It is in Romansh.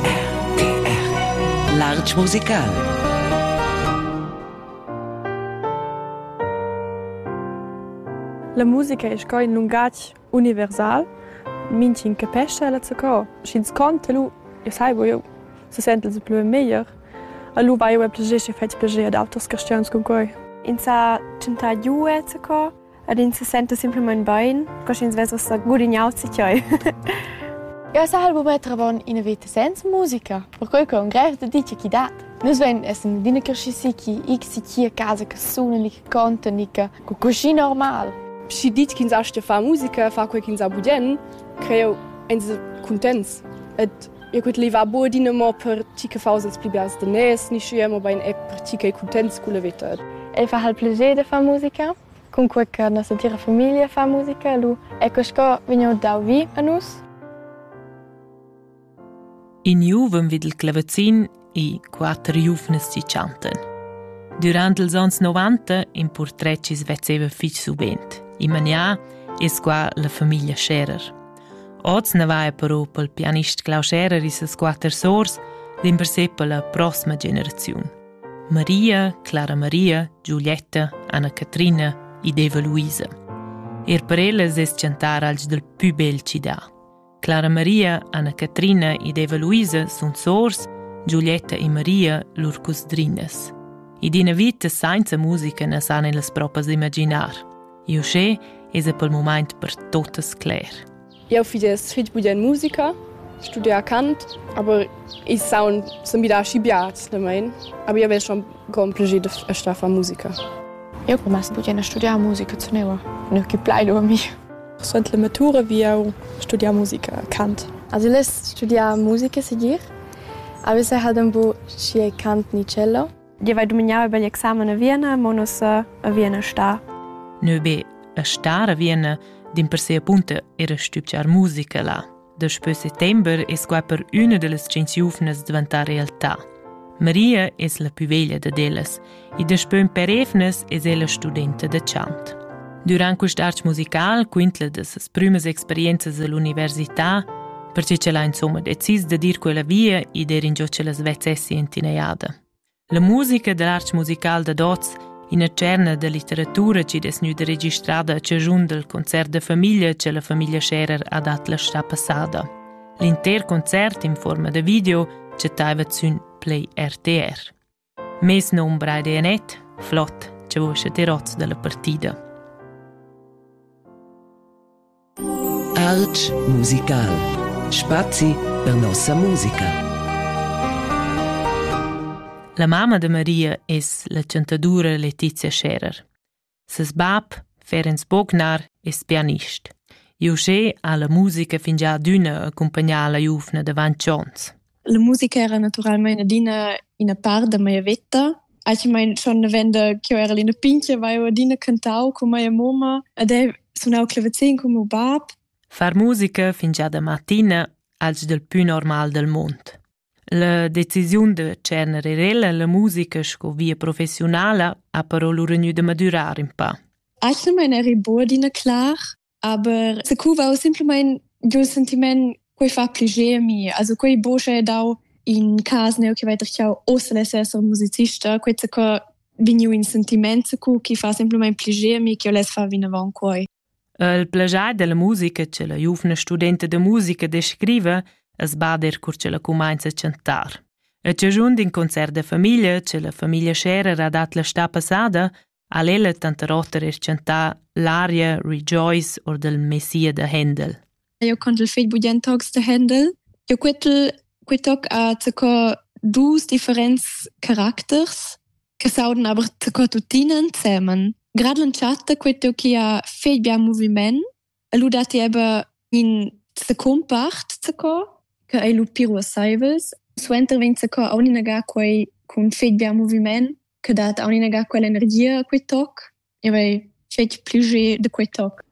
RTR Larg musical La musica è sco in lungatg universal, minch'in capescha ella zaccò, sch'ins conta lu, e sai eu, se sente se plü meglier. Allora vai eu a piagesce fetg piager ad auters castians con quei. Ins ha tschentà giue zaccò, Ed ins se senta simplamain bain, co sch'ins vess ussa gudignau tgei. Jeu sahal buca travon ina veta senza musica, perquei che un grev dedica chi dat. Nus vein essen adina cresciusi chi ich si chi a casa che suna ni che conta ni che cu cuschi normal. Schi ditg ch'ins astga far musica, far quei ch'ins ha budien, creo ins cuntents. Et Eu cud levar bod adina per ti che faus els pli bels daners, ni schia, mobein er per ti che cuntents cun la vita. El fa hal plager de far musica. Cunque che nossa tira famiglia fa musica, lu ecco sco vegniu dau vi a nus. In juvem vid il clavazin e quatter giuvnas ci chantan. Durant ils ans 90 in portret ci svezzeva fich subent. In manià es qua la famiglia Scherer. Oz ne va però pel pianist Klaus Scherer e ses quatter sors dimpersè per la prossima generaziun. Maria, Clara Maria, Giulietta, Anna Catrina ed Eva Luisa. Er per ellas es chantar alch dal pü bel ci dà. Clara Maria, Anna-Catrina ed Eva Luisa sun sors, Giulietta e Maria lur cusdrinas. Ed ina vita senza musica na san ellas propas imaginar. Uschè esa pel mumaint per totas cler. Eu fich fich bun in musica, studià Kant, aber ich sound sind wieder aschibiats damit. Aber ich habe schon kompliziert a studiare musica. Eu come a studiare studiare musica zu neua, ne che plai dormi. Suent la matura vi jau studiar musica, cant. Has less studiar musica segir? Avesse hat un bu schier cant nicello? Io vai dumignau über l'examen a Vienna, mo nus a Vienna sta. Nö be a sta a Vienna, din per se appunto era stübgiar musica là. Daspö settember es qua per üna da las tschient giuvnas dvantà realtà. Maria es la pü veglia dad ellas e daspö ün per evnas es ella studenta da chant. Durant quist arch musical quintla da ses prümas experienzas all'università, perche ch'ella insomma decis da dir quella via e der ingio ch'ella svezzessi in tinaiada. La musica d'art musical dad oz, ina tscherna da litteratura chi'd es gnüda registrada a chaschun dal concert da famiglia cha la famiglia Scherer ha dat la stà passada. L'inter concert in fuorma da video chattaiva sün Play RTR. Mes nom Braide Anet, flot, cha vos at hoz da la partida. Art musical. Spazi per nossa musica. La mamma de Maria es la chantadura Letizia Scherer. Ses bab, Ferenc Bognar, es pianist. Iuschè ha la musica fingià adüna accumpagnà la giuvna davant chons. La musica era naturalmein adina ina part da mia veta. Actualmein schon avenda ch'jeu era ina pintga haveva adina cantau cun mia moma ed ei sunau clavazin cun meu bab. Far musica fingiada mattina als del pü normal del mund. La decisiun da tschener er ella la musica sco via professionala ha però lu regnu da madurar in pa. Actualmein eri buc adina clar, Aber secuva simpelmain giu sentiment quei fa pli gemi also quei bosche dau in cas neu che weiter chau osel esser musicista quei se co vegniu in sentiment cu chi fa simpelmain pli gemi che les fa vinavon quei Il plagiar della musica che la giuvna studenta de musica descrive es bader cur che la cumainza a chantar. A ciagiun d'in concert de famiglia che la famiglia Scherer ha dat la sta passada ha ella tanter oter reschantà l'aria Rejoice or del Messia de Händel. Eu contel fegl budient tocs de Händel. Eu quetel quei toc a co dus differents caracters che sauden aber co tuttinen semen. Gradlen chatta quei teu chi ha fegl bia moviment E lu dat ti aber in secumpart sco che ei lu pir uasseivels. Suenter vegn sco aun inaga quei cun fetg bien moviment che dat aun inaga quell'energia a quei toc e vei fetg pli de quei toc.